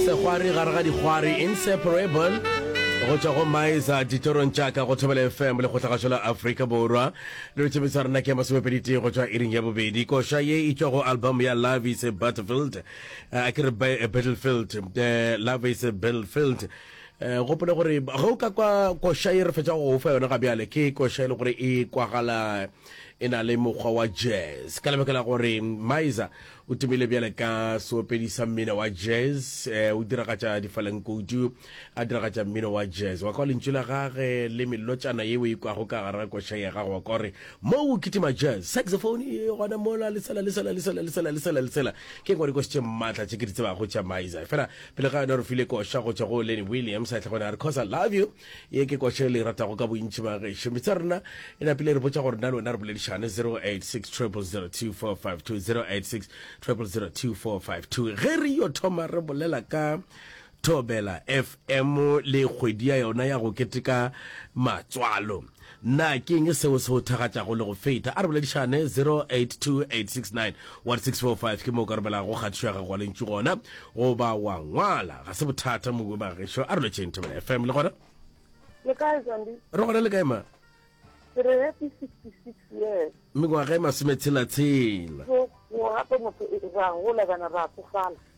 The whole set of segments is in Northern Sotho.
Segwari gare ga dikgwari Inseparable go tšwa go Maiza ditorong tša ka go Thobela FM le go tlhagašo la Afrika Borwa. Re re tšebiso rena ke masomepeditee go tšwa iring ya bobedi. Koša ye e tšwa go album ya Love is a Battlefield. Eh, a ke re ba- eh, Battlefield. Eh, Love is a Battlefield. Eh, gopole gore ge o ka kwa koša ye re fetša go o fa yona ga bjale ke koša e le gore e kwagala e na le mokgwa wa jazz ka lebaka la gore maiza O tumile bjale ka seopedi sa mmino wa jazz. Eh, o diragatša difalenkoutu, a diragatša mmino wa jazz. Wa kwa lentšu la gage le melotšana ye o e kwago ka gare ga koša ya gago wa kwa gore mo o kitima jazz. Saxophone e gona mola le sela le sela le sela le sela le sela le sela. Ke ngwa dikoši tše matla tše ke di tsebago tša Maiza. Fela pele ga yona re file koša go tšwa go Lenny Williams a tle gona a re cause I love you. Ye ke kwatšo e le e ratago ka bontši bagešo. Meetse a rena e napile e re botša gore nna le wena re boledišane 0860002452, 0860002452. Ge re yo thoma re bolela ka Thobela FM le kgwedi ya yona ya go keteka matswalo. Na ke eng seo se go thakgatšago le go feta? A re boledišane, 0828691645 ke moo o ka romelago kgatišo ya gago wa lentšu gona goba wa ngwala. Ga se bothata mobu ba gešo. A re lotšheng Thobela FM le gona. Le kae Zandi? Re gona le kae ma? Ke re happy 66 years. Mengwaga e masome tshela tshela. Go gape motho e, ra gola bana ra tsofala.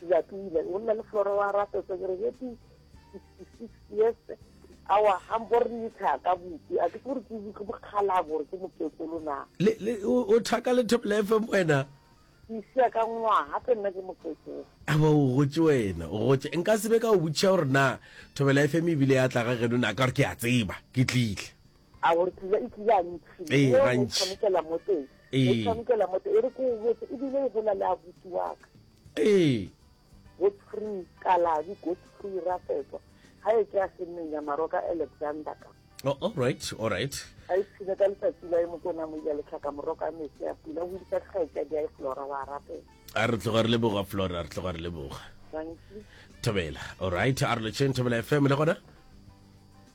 Sejatlile o nna le flora wa rato segregeti sixty six years awa ga mpo re ntsha ka botse a ke se gore ke bokgalabo gore ke mokekolo na o thaka le thobela fm wena ke isia ka ngwaga ke nna ke mokekolo aba o gotse wena o gotse nka sebe ka o botšha gore na thobela fm ebile ya tla ga geno na ka gore ke a tseba ke tlile a gore pula e tlile a ntšhi ee e gantši tshwanekela mo teng ee e tshwanekela mo teng e re ko botse e bile e gola le abuti wa ka ee godfrey kalabi godfrey rafetwa ga e ke a senneng ya maro ka alexander ka oh, all right all right a e tshile ka letsatsi la e mokona mo ya letlhaka moroka metse ya pula go disa tlhaetsa di a e flora wa rapela a re tloga re leboga flora re tloga re leboga thobela all right a re lotšheng thobela fm le gona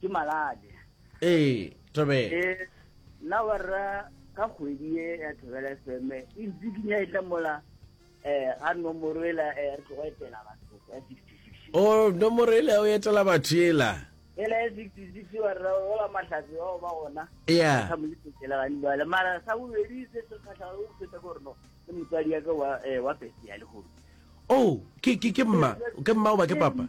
ke malale ee tobela ee nna wa rra ka kgwedi e ya thobela fm e ntse ke nya e tla mola um ga nomoro ela um re tlogo etela batho ya sixty six o nomoro e le o etela batho ela ela ya sixty six wa rra ola mahlatse bao ba gona ya sa mo letetselagane bale mara sa bobedi se se kgatlhago o feta ko reno ke motswadi yaka wa um wa pese ya legodu o ke ke ke mma ke mma o ba ke papa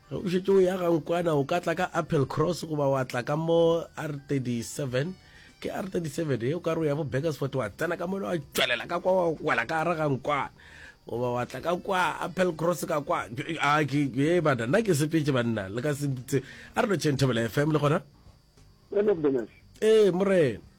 Ge o šetše o ya ga Nkwana o ka tla ka Applecross goba wa tla ka mo R37, ke R37 ye, o ka re o ya bo Burgersfort wa tsena ka mole wa tšwelela ka kwa wa wela ka gare ga Nkwana goba wa tla ka kwa Applecross ka kwa. A ke ye bana nna ke sepetše banna le ka se mpitse a re no tšheng Thobela FM le gona. Ee morena.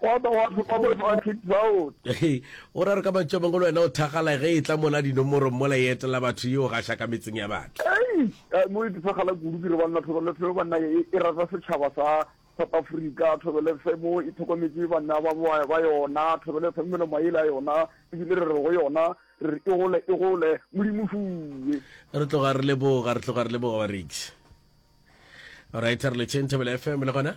Gwa ba gwa fihla bohlatse bjao. Go ra re ka mantšu a mangwe le wena o thakgala ge e tla mola dinomorong mola e etela batho ye o gaša ka metseng ya batho. Hei! Mo e phethagala kudu ke re banna thobelo fe banna e e rata setšhaba sa South Africa, thobelo fe mo e thokometše banna ba ba ba yona, thobelo fe melomo a yela yona e bile re re go yona re re e gole e gole Modimo fuwe. Re tloga re leboga re tloga re leboga Warrigs. Alright, re le Chain Thobela FM le gona.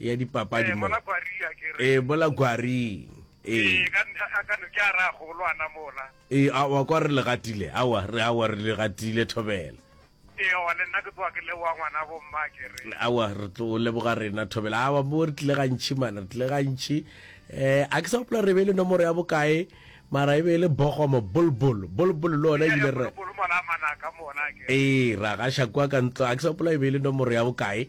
ya dipapadi eh, mola ee bola kwaring ee eh, eh, awa kwa re legatile awa re awa re legatile thobela awa re tlo leboga rena thobela awa bo re tlile gantšhi mana re tlile gantšhi um a ke sa gopola re be le nomoro ya bokae mara e be e le bogomo bolbol bolbol le ona ebile re ee ra gaša kwa ka ntlo a ke sa gopola e be e le nomoro ya bokae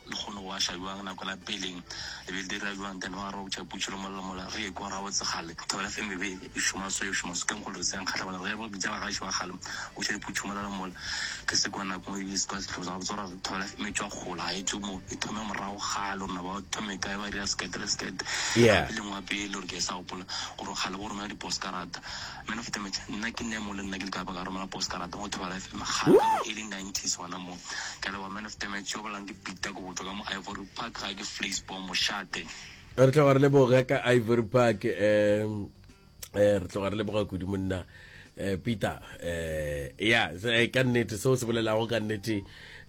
Lehono wa ša bjang nako la peleng le be le dira bjang then wa re opša putšo le mollo mola re ekwa gabotse kgale thobela fm e be e šoma so e šoma so ke nkgolo re se ya nkgahla mola re re bitša bagaešo ba kgale o ša diputšo mola le mola ke se kwa nako e be se kwa sehlobo sa gabotse gore re thobela fm e tšwa gola ga e tšwe mo e thome morago kgale rona ba thome kae ba dira skete le skete yeah e lengwe wa pele gore ke sa gopola gore kgale go romela diposkarata Man of damage nna ke Nemo le nna ke leka baka romela postcard go thwala FM kgale ka bo early nineties gona mo ka leboga man of damage yo bolang ke Peter ke go tšwa ka mo Ivory Park ga ke Fleece bo mošate re tloga re leboga ka ivory park um re tloga re leboga kudu monna um peter um ya ka nnete seo se bolelago ka nnete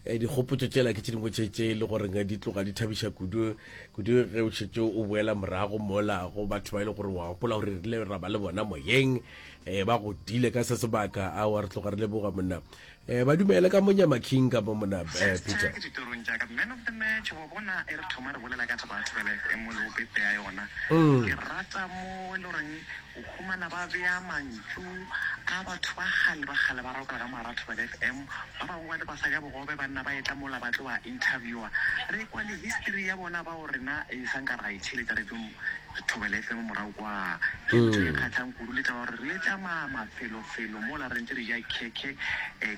Eh, dikgopotso tsela ke tse dingwe tse tse e le goreng di tloga di thabiša kudu kudu ge o šetse o boela morago mola go batho ba e le gore wa gopola gore rile ra ba le bona moyeng um ba godile ka se sebaka a wa re tloga re leboga monna um ba dumele ka monyama king ka mo mona eh, peter ditorong tša ka man of the match wa bona e re thoma re bolela ka taba ya thobeleko e mo le o pepea yona mm. ke rata mo e le goreng O humana ba bea mantšu a batho ba kgale ba kgale ba roka ka Marathobela FM. Ba bangwe ba le basadi a bogobe ba nna ba etla mola ba tlo ba interviewer. Re kwa le history ya bona bao rena e sa nka ra e theletša radio Thobela FM morago kwaa. Ke ntho e kgahlang kudu le taba ya gore le tšamaya mafelofelo mola re ntše re ja khekhe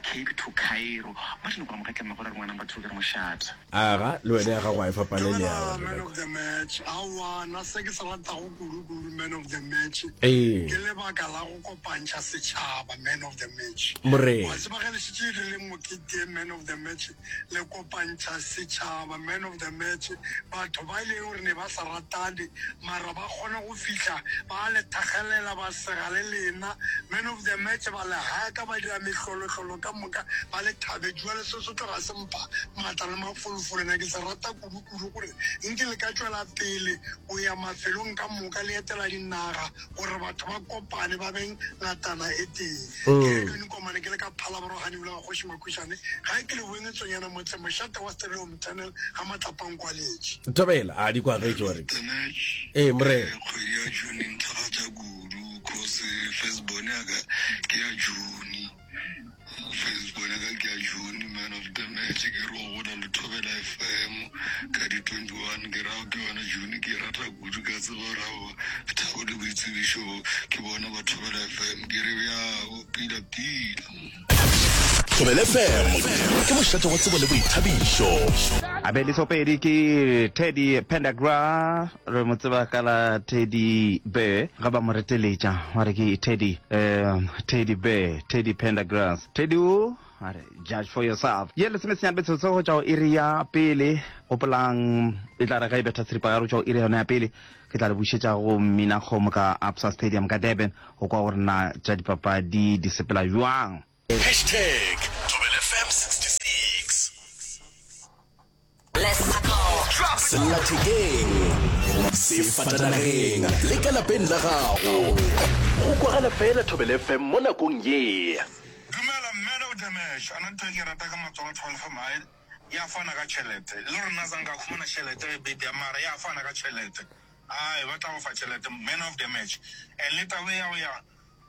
Cape to Cairo. Martin Kgwamogatleng Magora re ngwanang batho ke re mošate. Aga, le wena ya gago ga e fapane le ya gagwe. Man of the match, aowa, na se ke se ratago kudu-kudu man of the match, Ee. ke lebaka la go kopantšha setšhaba man of the match. Morena. Wa tseba ge le šetše e rile mokete man of the match, le kopantšha setšhaba man of the match. Batho ba e lego gore ne ba sa ratane mara ba kgona go fihla ba le thakgelela, ba sega le lena man of the match, ba le haka, ba dira mehlolo-hlolo ka moka, ba le thabetše. Bjale se se tlo ga se. mpa, maatla le mafolofolo. Na ke sa rata kudukudu gore nke le ka tšwela pele go ya mafelong ka moka le etela dinaga gore batho ba kopane ba be ngatana e tee. Ke Edwin Komane, ke le ka Phalaboro Ganyeulu ga Kgoši Makhušane, gae ke le boengetsonyana motseng mošate wa Stereo Mternal ga Matlapang kwa Letše. Thobela a di kwagetše gore Ee, Morena. Kgwedi ya June e nthakgatša kudu cause first born ya ka ke ya June. Facebook ya ka ke ya June man of the match ke re o gola le thobela fm ka di 21 ke rago ke yona June ke e rata kudu ka tseba gore ao thabo le boitsebišo bo ke bona ba thobela fm ke re bjao pila pila Thobela FM ke mošate wa tsebo le boithabišo. Abedi Sopedi ke Teddy Pendagra re mo tseba ka la teddy bear ga ba mo reteletša wa re ke teddy um teddy bear teddy pendergrass teddy o a re judge for yourself ye lesomesenyane betshotsho go tšwa go iri ya pele gopolang e tla re ga e betha seripa ya re tšwa go iri yona ya pele ke tla le bušetša go mminakgomo ka absa stadium ka durban go kwa gore na tša dipapadi di sepela bjang Hashtag ThobelFm 66. Sellathekeng, sefatanageng le ka lapeng la gago, go kwagala fela ThobelFm mo nakong ye. Dumela mme le o damage ana ntho e ke rata ka matsogo thobel fm ha ya fana ka chelete le hore na zanka khumana chelete re bit ya mara ya fana ka chelete ai ba tla go fa chelete man of damage and le taba ya go ya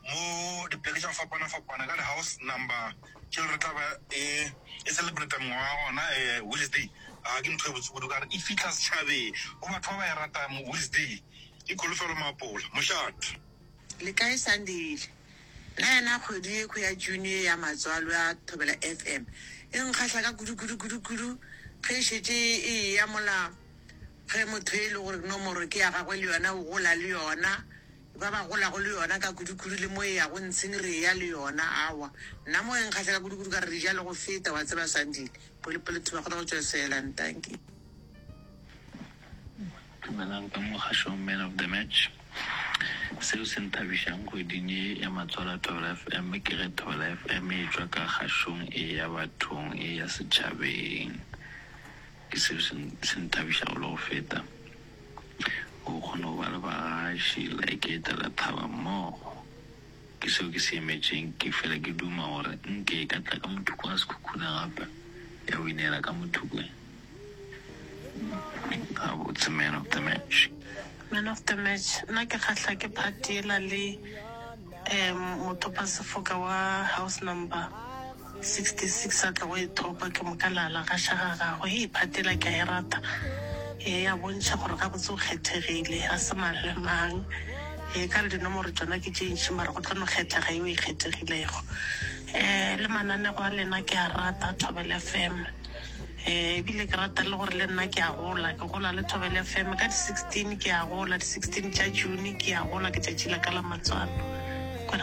Mo dipoleke tša go fapana-fapana ka di-house number tšeo re tla ba e e celebrate mengwaga ya gona um Wednesday. A ke ntho e botse kudu ka gore e fitlha setšhabeng go batho ba ba e ratang mo Wednesday ke kholofelo maapola mošate. Le kae Sandile? Nna yona kgwedi yekhwi ya June ye ya Matswalo ya Thobela FM e nkgahla ka kudu-kudu-kudu-kudu ge e šetše e eya mola ge motho e le gore nomoro ke ya gagwe le yona o gola le yona. ba ba golago le yona ka kudukudu le mo e yago ntsheng re eya le yona, aowa, nna mo e nkgahlela kudukudu ka re re ja le go feta, wa tseba, Sandile, pele, pele Thuba a kgona go tšwesela, ntanki. Dumelang ka mo kgašong Man of the Match. Seo se nthabišang kgweding ye ya matswalo a Thobela FM ke ge Thobela FM e tšwa ka kgašong e eya bathong e eya setšhabeng. Ke seo se, se nthabišago le go feta, go kgona go ba le bagaši like ke etela thaba mmogo. Ke seo ke se emetšeng. Ke fela ke duma gore nke e ka tla ka mothoko wa sekhukhune gape, ya go ineela ka mothokong. Gabotse, man of the match. Man of the match, nna ke kgahla ke part yela le, um, mothopasefoka wa house number. 66 a tla go e thopa, ke moka la la gaša ga gagwe. Hei, phate yela ke a e rata, e a bontšha gore gabotse o kgethegile, ga se mang le mang. E ka re dinomoro tšona ke tše ntši, mara go tlo no kgethega yo e kgethegilego. Um le mananego a lena ke a rata, Thobela FM. Um ebile ke rata le gore le nna ke a gola, ke gola le Thobela FM. Ka di 16 ke a gola, di 16 tša June ke a gola, ke tšatši la ka la matswalo.